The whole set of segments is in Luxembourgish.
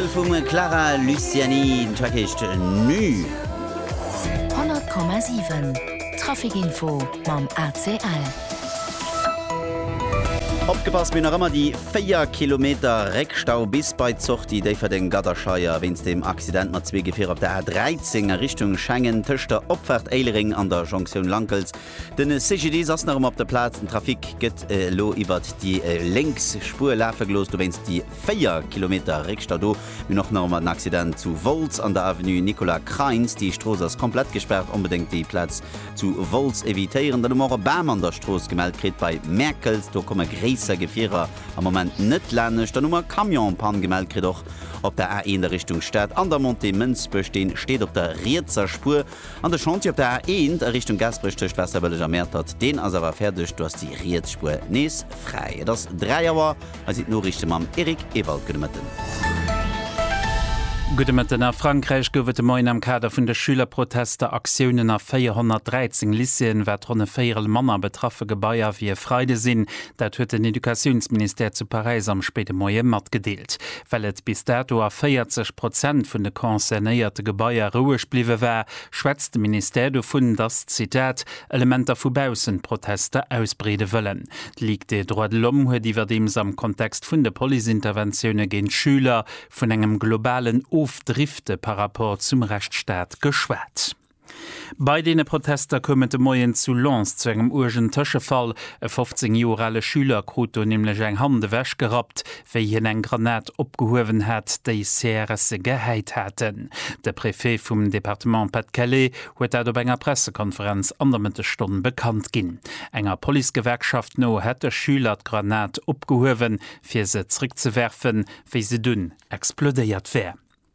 Single vum Clara Luciani, den Track heescht Nü. 100,7 Traficinfo mam ACL. Opgepasst, mir hunn nach ëmmer déi 4 Kilometer Réckstau bis bei d'Sortie Déifferdeng-Gadderscheier wéinst dem Accident mat zwee Gefierer op der A 13 a Richtung Schengen tëscht der Opfaart Éilereng an der Jonktioun Lankels. Den CGDIS ass nach emmer op der Plaz. Den Trafic gëtt elo iwwert déi lénks Spuer lafe gelooss, dowéinst déi 4 Kilometer Réckstau do. Mir hunn och nach emmer den Accident zu Wolz an der Avenue Nicolas Krainz. Déi Strooss ass komplett gespaart, onbedéngt déi Plaz zu Wolz evitéieren. Dann hu mer och e Bam an der Strooss gemellt kritt bei Mäerkelt. Do komme gréisser Gefierer am Moment net lanescht. Dann hu mer Camion-Pann gemellt kritt och op der A1 a Richtung Stad an der Montée Mënsbech. Dee steet op der rietser Spuer. An de Chantier op der A 1 a Richtung Gaasperech tëscht Waasserbëlleg a Mäertert, deen ass awer fäerdeg, do ass déi riets Spuer nees fräi. Et ass 3 Auer, hei sinn d'Noriichte mam Eric Ewald. Gudde Mëtten. Gudde Mëtten. A Frankräich gouf et de Moien am Kader vun de Schülerprotester Aktiounen a 413 Lycéeën, wat ronn e Véierel manner betraffe Gebaier wéi e Freide sinn. Dat huet den Educatiounsministère zu Paräis am spéide Moie matgedeelt. Well et bis dato a 40 Prozent vun de concernéierte Gebaier roueg bliwwe war, schwätzt de Ministère dovun, datt, Zitat, Elementer vu baussen d'Protester ausbreede wëllen. D'Ligue des droits de l'homme huet iwwerdeems am Kontext vun de Policeinterventioune géint Schüler vun engem globalen Ofdrifte par rapport zum Rechtsstaat geschwat. Bei deene Protester koum et de Moien zu Lens zu engem uergen Tëschefall. E 15 Joer ale Schüler krut do nämlech eng Hand ewech gerappt, wéi hien eng Granat opgehuewen hat, déi CRSe gehäit haten. De Préfet vum Departement Pas-de-Calais huet dat op enger Pressekonferenz an der Mëttesstonn bekannt ginn. Enger Policegewerkschaft no hätt de Schüler d'Granat opgehuewen, fir se zréckzewerfen, wéi se dunn explodéiert wär.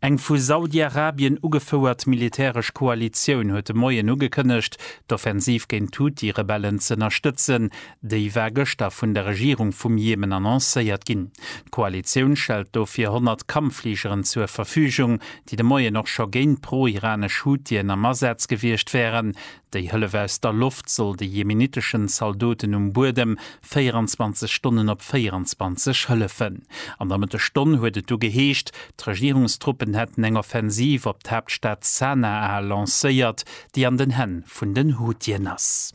Eng vu Saudiarabien ugefouert militäresch Koalitioun huet de Moien ugekënnegt, d'Offensiv géint d'Huthi-Rebellen z'ënnerstëtzen. Déi war gëschter vun der Regierung vum Jemen annoncéiert ginn. D'Koalitioun stellt dofir 100 Kampffligeren zur Verfügung, déi de Moien och scho géint d'pro-iranesch Huthien am Asaz gewiescht wären. Déi Hëllef aus der Loft soll de jemeniteschen Zaldoten um Buedem 24 Stonnen op 24 hëllefen. An der Mëttesstonn huet et du geheescht, d'Regierungstruppen hätten eng Offensiv op d'Haaptstad Sanaa lancéiert, déi an den Hänn vun den Huthiën ass.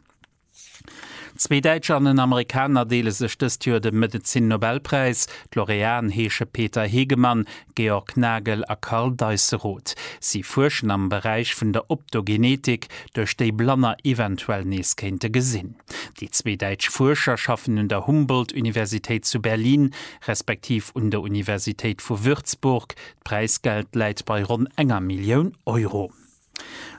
Zwee Däitscher an en Amerikaner deele sech dëst Joer de Medezin-Nobelpräis. D'Laureaten heesche Peter Hegemann, Georg Nagel a Karl Deisseroth. Si fuerschen am Beräich vun der Optogenetik, duerch déi Blanner eventuell nees kéinte gesinn. Déi zwee däitsch Fuerscher schaffen un der Humboldt-Universitéit zu Berlin, respektiv un der Universitéit vu Würzburg. D'Präisgeld läit bei ronn enger Millioun Euro.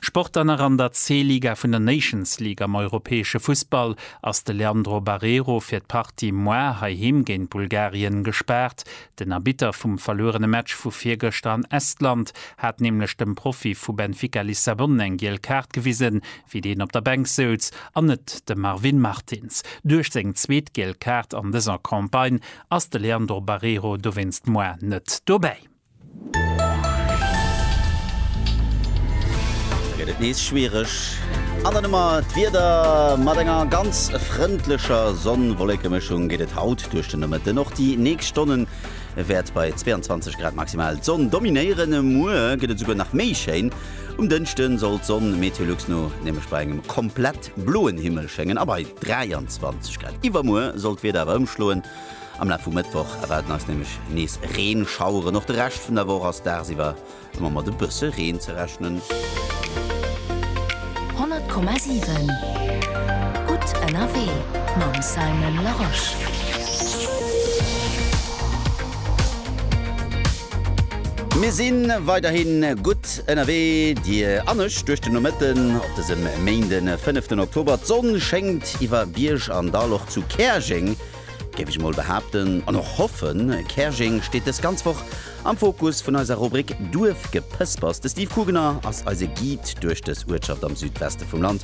Sport dann nach an der C-Liga vun der Nations League am europäesche Fussball ass de Leandro Barreiro fir d'Partie moar heiheem géint Bulgarien gespaart. Den Arbitter vum verluerene Match vu virgëschter an Estland hat nämlech dem Profi vu Benfica Lissabon eng giel Kaart gewisen, wéi deen op der Bänk souz, an net de Marvin Martins. Duerch seng zweet giel Kaart an dëser Campagne ass de Leandro Barreiro dowéinst moar net dobäi. Gëtt et nees schwiereg an der Nummer. D'Wieder, mat enger ganz frëndlecher Sonn-Wollekemëschung geet et haut duerch den Nomëtten. Och déi nächst Stonne wäert bei 22 Grad maximal d'Sonn dominéieren. Muer gëtt et esouguer nach méi schéin. Um Dënschde soll d'Sonn Meteolux no nämlech bei engem komplett bloen Himmel schéngen a bei 23 Grad. Iwwermuer soll d'Wieder awer ëmschloen. Am Laf vum Mëttwoch erwaarden eis nämlech nees Reenschaueren. Och de Rescht vun der Woch ass dagsiwwer ëmmer mat e bësse Reen ze rechnen. 100,7 gutt ënnerwee mam Simon Larosche. Mir si weiderhi gutt ënnerwee, Dir an ech, duerch den Nomëtten op dësem Méinden, 5 den Oktober. D'Sonn schéngt iwwer Bierg an Dall. Och zu Käerjeng géif ech mol behaapten, an och hoffen. Käerjeng steet dës ganz Woch am Fokus vun eiser Rubrik Duerfgepëspers. De Steve Kugener ass eise Guide duerch dës Uertschaft am Südweste vum Land,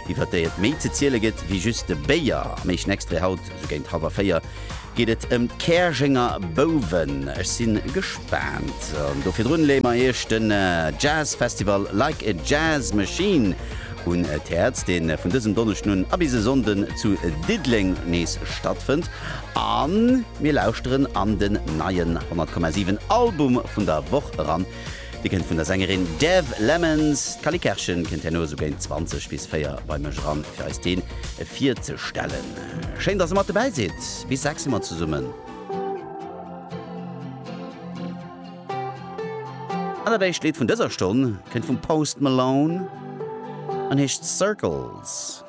iwwer déi et méi ze ziele gëtt wéi just de Béier. Am éischten Extrait haut esou géint hallwer véier geet et ëm d'Käerjenger Bouwen. Ech si gespaant. An do virdrun leeë mer iech den Jazz Festival Like a Jazz Machine un d'Häerz, dee vun dësem Donneschden un a bis e Sonnden zu Diddeleng nees stattfënnt a mir lauschteren an den neien 100,7 Album vun der Woch eran. Dee kënnt vun der Sängerin Dev Lemons. D'Cally Kerschen kënnt herno esou géint 20 bis 4 bei mech eran, fir eis dee virzestellen. Schéin, dass Der mat dobäi sidd. Bis 6 si mer zesummen. An dat éischt Lidd vun dëser Stonn kënnt vum Post Malone an heescht Circles.